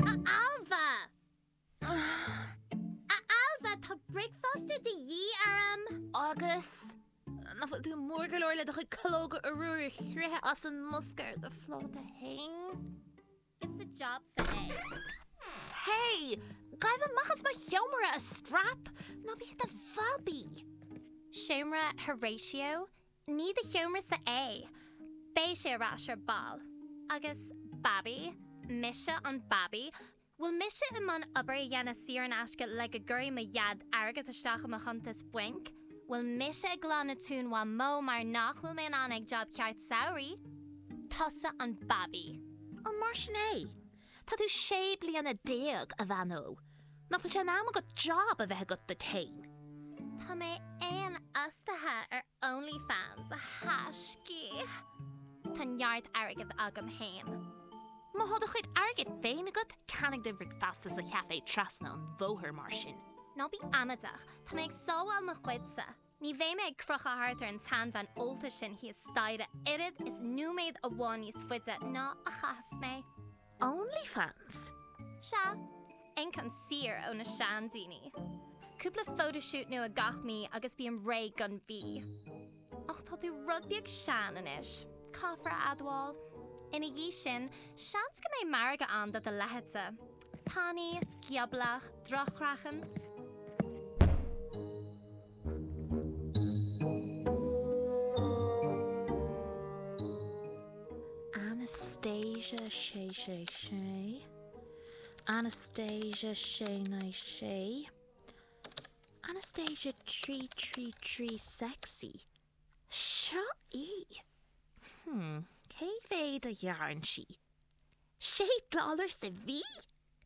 A Ailbhe, tá bricfeasta de dhíth orm! Agus nach bhfuil tú mór go leor le do chuid calóga arúir a shroicheadh as an mbosca ar do phláta fhéin? Is do jobsa é. Hey! Gabh amach as mo sheomra, a straip! Ná bí i do bhabaí! Seomra Horatio 'Ní do sheomrasa é, beidh sé ar ais ar ball. Agus Babaí? Mise an Babaí? Bhfuil mise i mbun obair a dhéanamh saor in aisce le go gcuirfidh mo Dhaid airgead isteach i mo chuntas bainc? Bhfuil mise ag glanadh tóin Mhamó mar nach bhfuil mé in ann ag jab ceart samhraidh? Tusa an Babaí. An mar sin é? Tá tú sé bliana déag, a bhean ó, nach bhfuil sé in am agat jab a bheith agat duit fhéin? Tá mé féinfhostaithe ar Onlyfans, a thaiscí. Tá neart airgead agam fhéin. Má thá do chuid airgid féin agat, ceannaigh do bhricfeasta sa chafé trasna an bhóthair, mar sin. Ná bí amaideach, tá mé ag sábháil mo chuidse. Ní bheidh mé ag crochadh thart ar an tseanbhean ólta sin thíos staighre oiread is nóiméad amháin níos faide ná a chaithfeas mé. Onlyfans? Sea, ioncam saor ó na seandaoine. Cúpla photoshoot nua gach mí agus bím réidh don mhí. Ach tá tú rud beag sean anois, caithfear a admháil. Ina dhiaidh sin, seans go mbeidh margadh ann do do leithéidse. Tanaí, gioblach, droch-chraiceann. Anastasia Sé Sé Sé Anastasia Sé Naoi Sé Anastasia Trí Trí Trí Sexy Seo í! Hm, cé mhéad a ghearrann sí? Sé dollar sa mhí?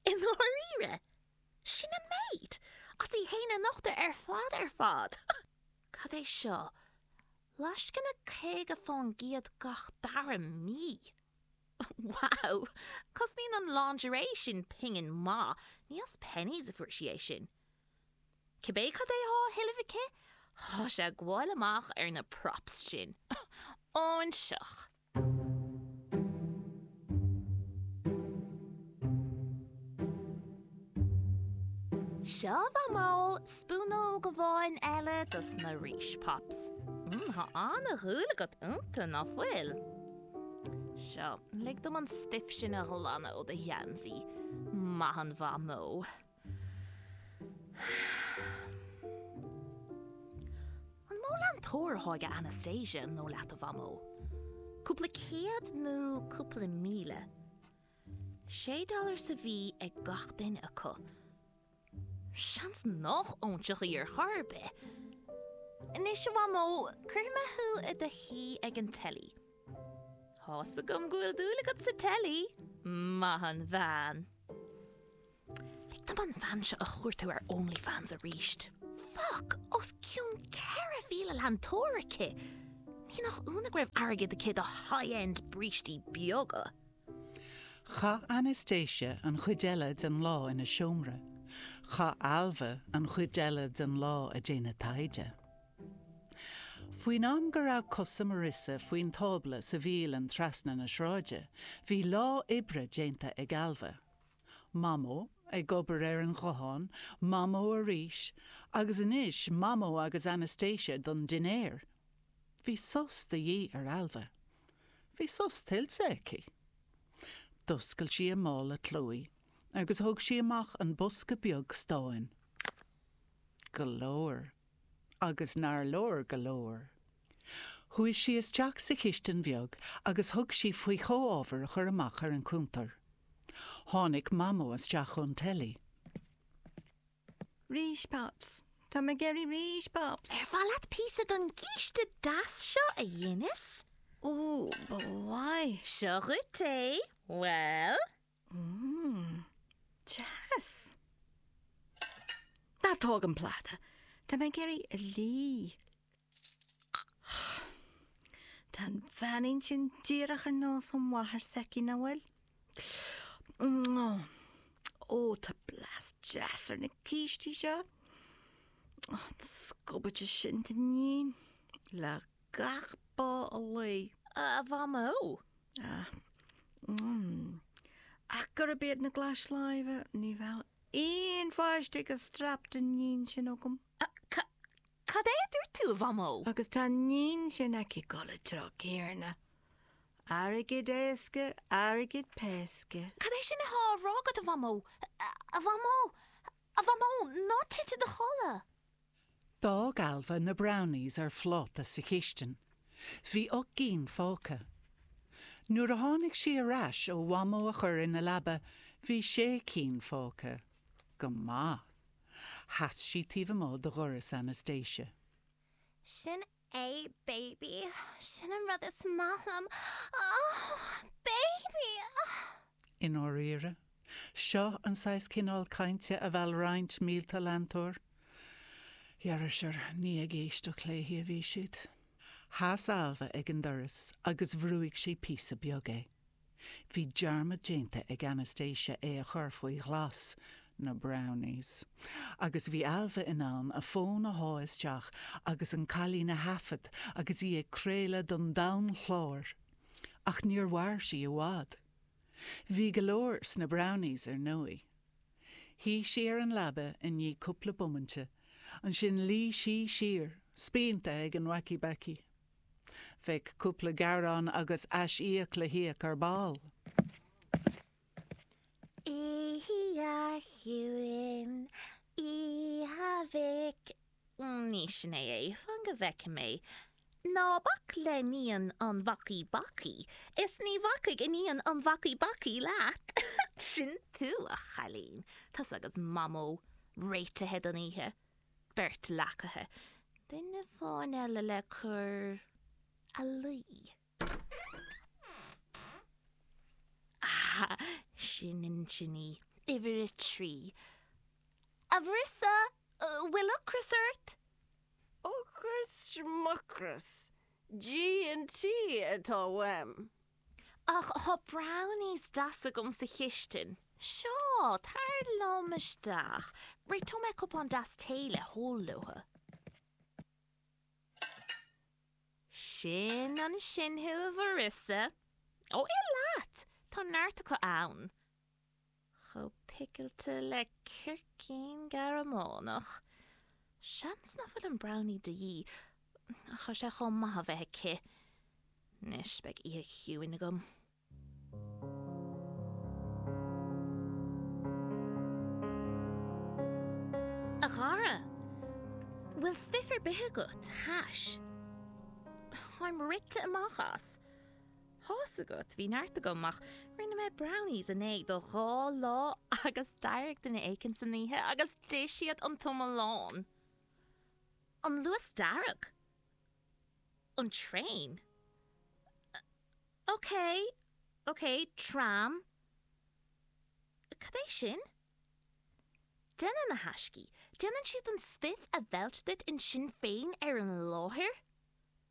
I ndáiríre? Sin an méid? As í fhéin a nochtadh ar fad ar fad! Cad é seo? Lascaine caoga fán gcéad gach dara mí? Wow! Cosnaíonn an lingerie sin pingin maith, ní as penneys a fuair sí é sin. Cibé cad é thá á thuilleamh aici, thá sé ag gabháil amach ar na props sin. Óinseach! Seo, a Mhamó, spúnóg amháin eile dos na Reese Pops. Mmm, tá an-dhúil agat iontu, ná fuil? Seo, lig dom an stuif sin a ghlanadh ó do gheansaí, maith an Mhamó! An mó leantóir atá ag Anastasia an dóigh leat a Mhamó? Cúpla céad nó cúpla míle? Sé dollar sa mhí ag gach duine acu? Seans nach óinseach í ar chor ar bith! Anois a Mhamó, cuirfidh mé thú i do shuí ag an teilí. Tá's agam go bhfuil dúil agat sa teilí, maith an bhean! Lig dom an bhean seo a chuartú ar OnlyFans arís. Fuck! Os cionn 4,000 leantóir aici! Ní nach ionadh go raibh airgead aici do high-end brístí beaga! Chaith Anastasia an chuid eile den lá ina seomra. Chaith Ailbhe an chuid eile den lá ag déanamh taighde. Faoin am go raibh cosa Marissa faoin tábla sa bhialann trasna na sráide, bhí lá oibre déanta ag Ailbhe. Mamó ag obair ar an ghuthán, Mamó arís, agus anois Mamó agus Anastasia don dinnéar. Bhí sos de dhíth ar Ailbhe. Bhí sos tuillte aici. D'oscail sí a mála clúimh agus thóg sí amach an bosca beag stáin. Go leor. Agus nár leor go leor! Chuaigh sí isteach sa chistin bheag agus thug sí faoi chomhábhair a chur amach ar an chuntar. Tháinig Mamó isteach ón teilí. Rís Pops! Tá mé ag iarraidh rís Pops! Ar mhaith leat píosa don gcíste deas seo, a Dhennis? Ó, ba mhaith! Seo dhuit é. Bhuel? Mmm. Deas. Ná tóg an pláta! Tá mé ag iarraidh a lí. Tá an bheanín sin díreach ar nós an mháthair s'aici, nach bhfuil? Ó, tá blas deas ar na cístí seo. An scubaide sin d'iníon. Lag. gach bá a luí. A Mhamó! Ah, mm. Ach gurb iad na glais láimhe, ní bheadh aon pháiste ag an straip den iníon sin agam. Ca, cad é a dúirt tú, a Mhamó? Agus tá an iníon sin aici ag gabháil an treo céanna. Airgead éasca, airgead péasca. Cad é sin atá á rá agat, a Mhamó? A Mhamó! A Mhamó! Ná tit i do chodladh! D'fhág Ailbhe na brownies ar phláta sa chistin. Bhí ocht gcinn fágtha. Nuair a tháinig sí ar ais ó Mhamó a chur ina leaba, bhí sé cinn fágtha. Go maith. Sheas sí taobh amuigh de dhoras Anastasia. Sin A baby, sin an rud is maith liom, ah, baby, ah. I ndáiríre, seo an saghas cineál cainte a mheall roinnt mílte leantóir. Dheirfisear, ní ag éisteacht léi a bhí siad. Sheas Ailbhe ag an doras agus bhrúigh sí píosa beag é. Bhí dearmad déanta ag Anastasia é a chur faoi ghlas, na brownies, agus bhí Ailbhe in ann a fón a shá isteach agus an cailín a thaifead agus í ag craoladh don domhan chláir! Ach níor mhair sí i bhfad. Bhí go leor sna brownies, ar ndóigh. Shuigh sí ar an leaba i ndiaidh cúpla bomainte, ansin luigh sí siar, spíonta ag an wacky-backy. Bheadh cúpla gearán agus ais-íoc le híoc ar ball. Itheadh a shuim i a mhic. Ní sin é a itheann go bhfeicfidh mé. Ná bac le iníon an bhacaí bacaí, is ní bhacfaidh iníon an bhacaí bacaí leat. Sin tú, a chailín. Tusa agus Mamó réitithe don oíche. beirt leacaithe, duine amháin eile le cur a luí. Ah, sin ansin í, uimhir a trí. A Mharissa, bhfuil ocras ort? Ocras, schmucras, G&T atá uaim. Ach tá brownies deasa agam sa chistin. Seo, tar liom isteach. Réiteoidh mé cupán deas tae le hól leofa. Sin ansin thú, a Mharissa. Ó, ith leat! Tá neart acu ann. chomh picilte le circín Gearmánach. Seans nach bhfuil an brownie de dhíth, ach tá sé chomh maith a bheith aici. Anois, beidh oíche chiúin agam. A chara, bhfuil stuif ar bith agat? Hash? Táim rite amach as! Tá's agat, bhí neart agam, ach rinne mé brownies inné do dhá lá agus d'éirigh duine éigin san oíche agus d'ith siad an t-iomlán! An Luas Dearg? An traein? OK, OK, tram? Cad é sin? Déanann na haistí, déanann siad an stuif a mheilt duit ansin féin ar an láthair?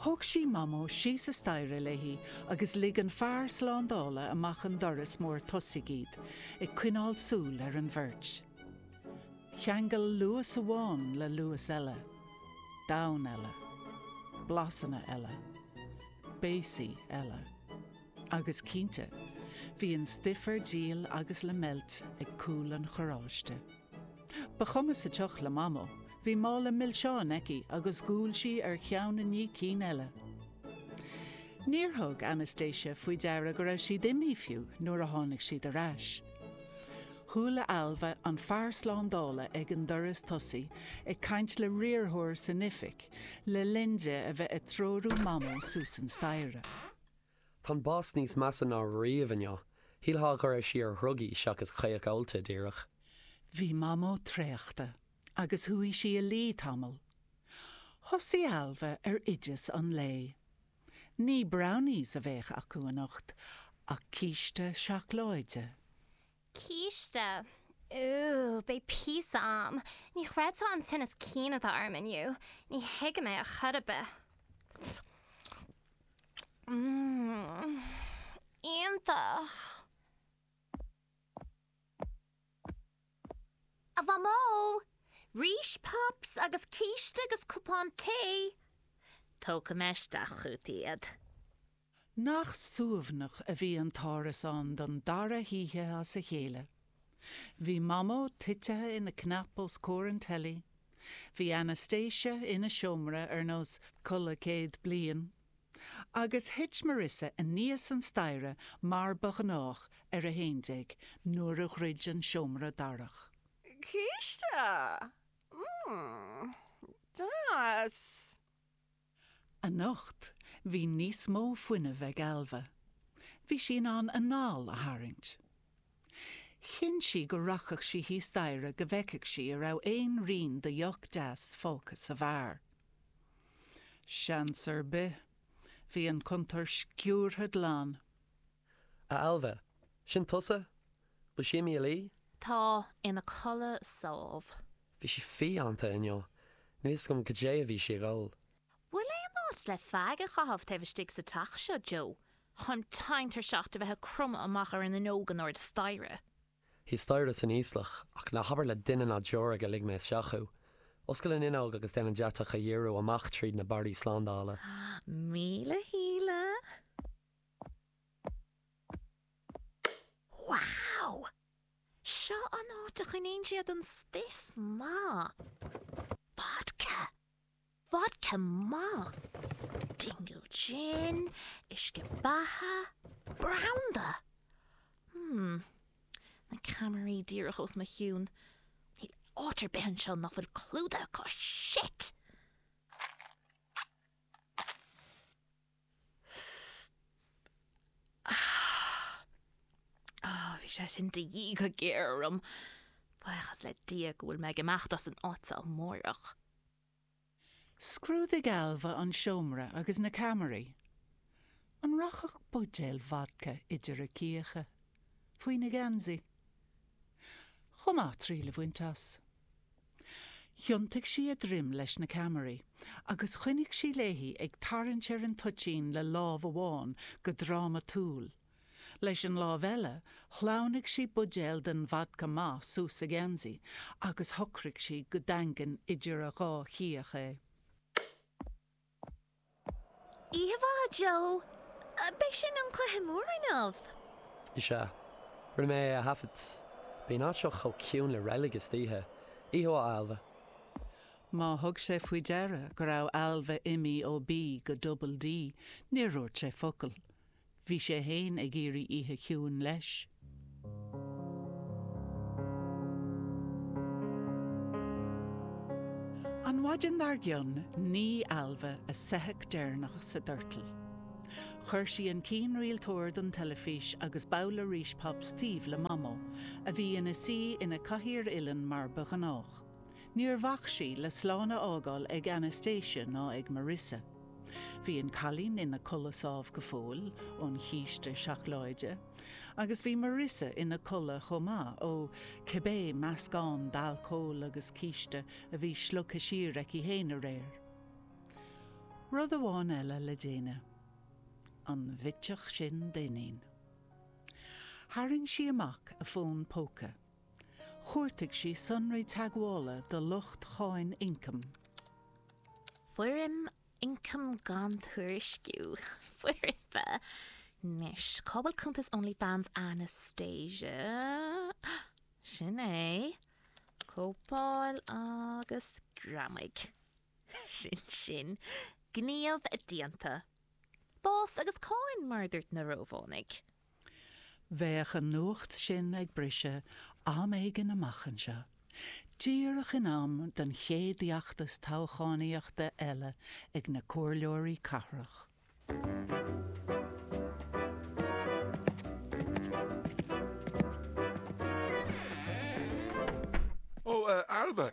Thóg sí Mamó síos an staighre léi agus lig an fear slándála amach an doras mór tosaigh iad, ag coinneáil súil ar an bheirt. Cheangail luas amháin le luas eile. Domhan eile. Blasanna eile. Béasaí eile. Agus cinnte, bhí an stuif ar díol agus le meilt ag cúl an charráiste. Ba chuma sa tsioc le Mamó, bhí mála milseán aici agus dhiúl sí ar cheann i ndiaidh cinn eile. Níor thug Anastasia faoi deara go raibh siad imithe fiú nuair a tháinig siad ar ais. Chuala Ailbhe an fear slándála ag an doras tosaigh ag caint le riarthóir san oifig le linn di a bheith ag treorú Mamó suas an staighre. Tá an boss níos measa ná riamh inniu. Shílfeá go raibh sí ar dhrugaí seachas caoch ólta díreach. Bhí Mamó traochta agus chuaigh sí a luí tamall. Thosaigh Ailbhe ar oideas an lae. Ní brownies a bheadh acu anocht ach císte seacláide. Císte! Úúú, beidh píosa a'm! Ní chreidfeá an tinneas cinn atá orm inniu, ní thuigim é ar chor ar bith. Mmm. Iontach! A Mhamó! Rís pops agus císte agus cupán tae! Tógfaidh mé isteach chugat iad. Nach suaimhneach a bhí an t-árasán don dara hoíche as a chéile. Bhí Mamó titithe ina cnap os comhair an teilí, bhí Anastasia ina seomra ar nós codladh céad bliain, agus thit Marissa aníos an staighre mar ba ghnách ar a haon déag nuair a dhruid an seomra darach. Císte! Mmm. Deas! Anocht bhí níos mó fuinnimh ag Ailbhe. Bhí sí in ann a hanáil a tharraingt. Chinn sí go rachadh sí thíos staighre go bhfeicfeadh sí an raibh aon rian de dheoch deas fágtha sa bheár. Seans ar bith, bhí an cuntar sciúrtha glan. A Ailbhe, sin tusa? Bhfuil sí imithe a luí? Tá, ina codladh sámh. Bhí sí fiánta inniu. Níl a fhios agam goidé a bhí sí ag ól. Bhfuil aon áit le feaig a chaitheamh taobh istigh sa teach seo, Joe? Táim tinn tuirseach a bheith ag cromadh amach ar an fhuinneog in airde staighre? Thíos staighre san íoslach, ach ná habair le duine ná deoraí gur lig mé isteach thú. Oscail an fhuinneog agus déan an deatach a dhíriú amach tríd na barraí slándála. Míle shíle! Wow! Seo an áit a choinníonn siad an stuif maith. Vodka! Vodka maith! Dingle Gin, uisce beatha, branda! Hmm. Na ceamaraí díreach os mo chionn. Níl áit ar bith anseo nach bhfuil clúdaithe acu. Shit! Bhí sé sin de dhíth go géar orm. Buíochas le Dia go bhfuil mé ag imeacht as an áit seo amárach. Scrúdaigh Ailbhe an seomra agus na ceamaraí. An rachadh buidéal vodca idir a cíocha? Faoina geansaí? Chomh maith triail a bhaint as. Thiontaigh sí a droim leis na ceamaraí agus choinnigh sí léi ag tarraingt ar an toitín le lámh amháin go drámatúil. Leis an lámh eile, shleamhnaigh sí buidéal den vodca maith suas a geansaí agus shocraigh sí go daingean idir a dhá chíoch é. Oíche mhaith, Joe, Ab é sin an cluiche mór inniu! Is ea. Rinne mé é a thaifead. Bíonn an áit seo chomh ciúin le reilig istoíche. Oíche mhaith, Ailbhe. Má thug sé faoi deara go raibh Ailbhe imithe ó B go Double D, níor dhúirt sé focal. Bhí sé fhéin ag iarraidh oíche chiúin leis. An mhaidin dar gcionn nigh Ailbhe a soitheach deireanach sa doirteal. Chuir sí an cianrialtóir don teilifís agus babhla Rice Pops taobh le Mamó, a bhí ina suí ina cathaoir uilleann mar ba ghnách. Níor bhac sí le slán a fhágáil ag Anastasia ná ag Marissa. Bhí an cailín ina codladh sámh go fóill ón chíste seacláide, agus bhí Marissa ina codladh chomh maith, ó cibé meascán d'alcól agus císte a bhí slogtha siar aici fhéin aréir. Rud amháin eile le déanamh. An bhitseach sin d'iníon. Tharraing sí amach a fón póca. Chuartaigh sí sonraí teagmhála do lucht Cháin Ioncaim. Foirm Ioncam Gan Tuairisciú, foirfe, Anois, cá bhfuil cuntas Onlyfans Anastasia? Sin é. Cóipeáil agus greamaigh. Sin sin. Gníomh déanta. Bás agus cáin, mar a dúirt na Rómhánaigh. Bheadh an nuacht sin ag briseadh am éigin amach anseo, díreach in am don chéad fheachtas toghchánaíochta eile ag na comhairleoirí cathrach. Ó, a Ailbhe!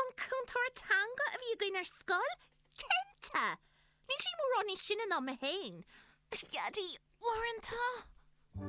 An cúntóir teanga a bhí againn ar scoil? Cinnte! Níl sí mórán níos sine ná mé féin, a Dhaidí, uaireanta!